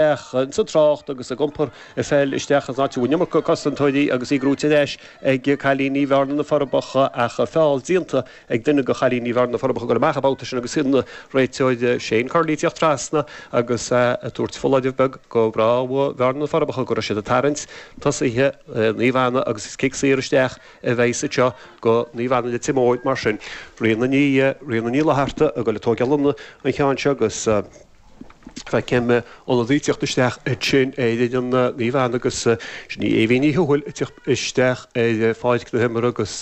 Ach ins an trácht agus ag iompar an pheil isteach ins an áit a bhfuil an iomarca cosantóirí agus í gnóite ar ais ag cailíní Bhearna, Na Forbacha, ach feall déanta ag duine de chailíní Bhearna, Na Forbacha, ag goil amach an babhta sin agus an réiteoir Shane Curley ag teacht trasna agus é ag tabhairt foláireamh beag do mhná Bhearna, Na Forbacha go raibh siad ag tarraingt tosaithe Naomh Anna agus is cic saor isteach a bheidh sa seo do Naomh Anna Leitir Móir. Mar sin, Ríona Ní Fhlatharta ag dul ag tógáil an cheann seo agus. Feicim ionadaí ag teacht isteach ansin ar fhoireann Naomh Anna, agus sin í Aoibhín Ní Thuathail ag teacht isteach ar pháirc na himeartha agus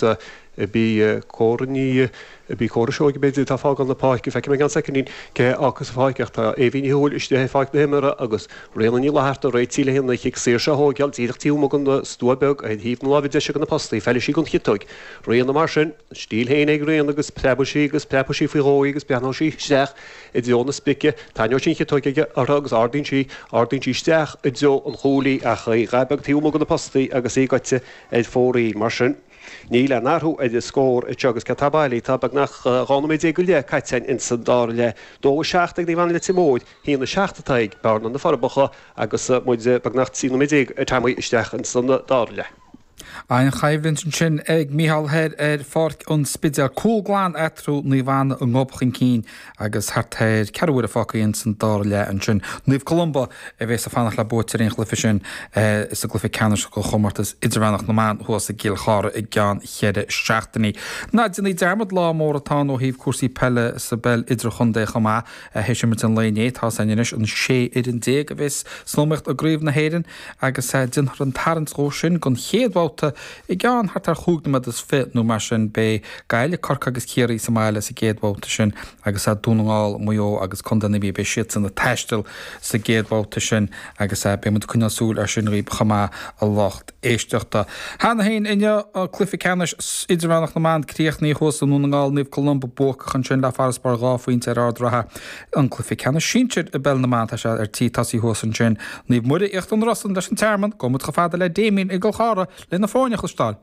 ab í Cora Ní, ab í Cora Seoighe an té atá ag fágáil na páirce. Feicfidh muid i gceann soicindín cé a fhágfas an pháirc ach tá Aoibhín Ní Thuathail istigh ar pháirc na himeartha agus Ríona Ní Fhlatharta réitithe le haghaidh an chic saor seo a thógáil díreach taobh amuigh den stua beag ar thaobh na láimhe deise de na postaí. Feilfidh sí don chiotóg, Ríona, mar sin. A stíl féin ag Ríona agus preabfaidh sí agus preabfaidh sí faoi dhó í agus breathnóidh sí isteach i dtreo na spíce. Tarraingeoidh sí an chiotóg aige, uirthi agus ardaíonn sí, ardaíonn sí isteach i dtreo an chúil í ach í ábhar beag taobh amuigh de na postaí agus í goite ar fóraoil. Mar sin, níl aon athrú ar an scór anseo agus céard atá bailithe? Tá beagnach 12 nóiméad go leith caite againn ins an dara leath. Dó a seacht ag Naomh Anna Leitir Móir, haon a seacht atá ag Bearna-Na Forbacha agus muid beagnach 13 nóiméad ar fad isteach ins an dara leath. An-choimhlint ansin ag Micheál thoir ar Pháirc an Spidéil, cúl glan eatarthu, Naomh Anna a ngob chun cinn agus thart ar ceathrú uaire fágtha ins an dara leath ansin, Naomh Columba a bhéas ag fanacht le buaiteoirí an chluiche sin sa gcluiche ceannais den chomórtas idirmheánach na mban thuas i gCill Chartha i gceann cheithre seachtainí. Ná déanaí dearmad, lá mór atá ann ó thaobh cúrsaí peile sa bpeil idirchontae chomh maith. Th'éis imirt an lae inné, tá a fhios againn anois an 16 fhoireann a bhéas san iomaíocht i gCraobh na hÉireann, agus déanfar an tarraingt dhó sin don chéad bhabhta i gceann thart ar chúig nóiméad is fiche nó mar sin. Beidh Gaillimh, Corcaigh agus Ciarraí sa mbaile sa gcéad bhabhta sin agus Dún na nGall, Maigh Eo agus Contae na Mí, beidh siadsan ag taisteal sa gcéad bhabhta sin agus beidh muid ag coinneáil súil ar sin dhaoibh chomh maith a lucht éisteachta. Cheana féin inniu, cluiche ceannais idirmheánach na mban críochnaithe thuas i nDún na nGall, Naomh Columba buacach ansin le farasbarr dhá phointe ar Ard an Rátha, an cluiche ceannais sinsir i bpeil na mban. Tá sé ar tí tosaí thuas ansin. Naomh Muire, Íochtar na Rosann, leis an Tearmann, gabhfaidh muid chomh fada le Damien i gCill Chartha leis na foirne a chloisteáil.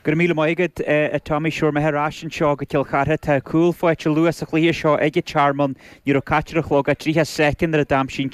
Go raibh míle maith agat, a Tommy. 'Sé bhur mbeatha ar ais anseo go Cill Chartha. Tá cúl faighte luath sa chluiche seo ag an Tearmann. Ní raibh caite ar an chlog ach triocha soicind nuair a d'aimsigh an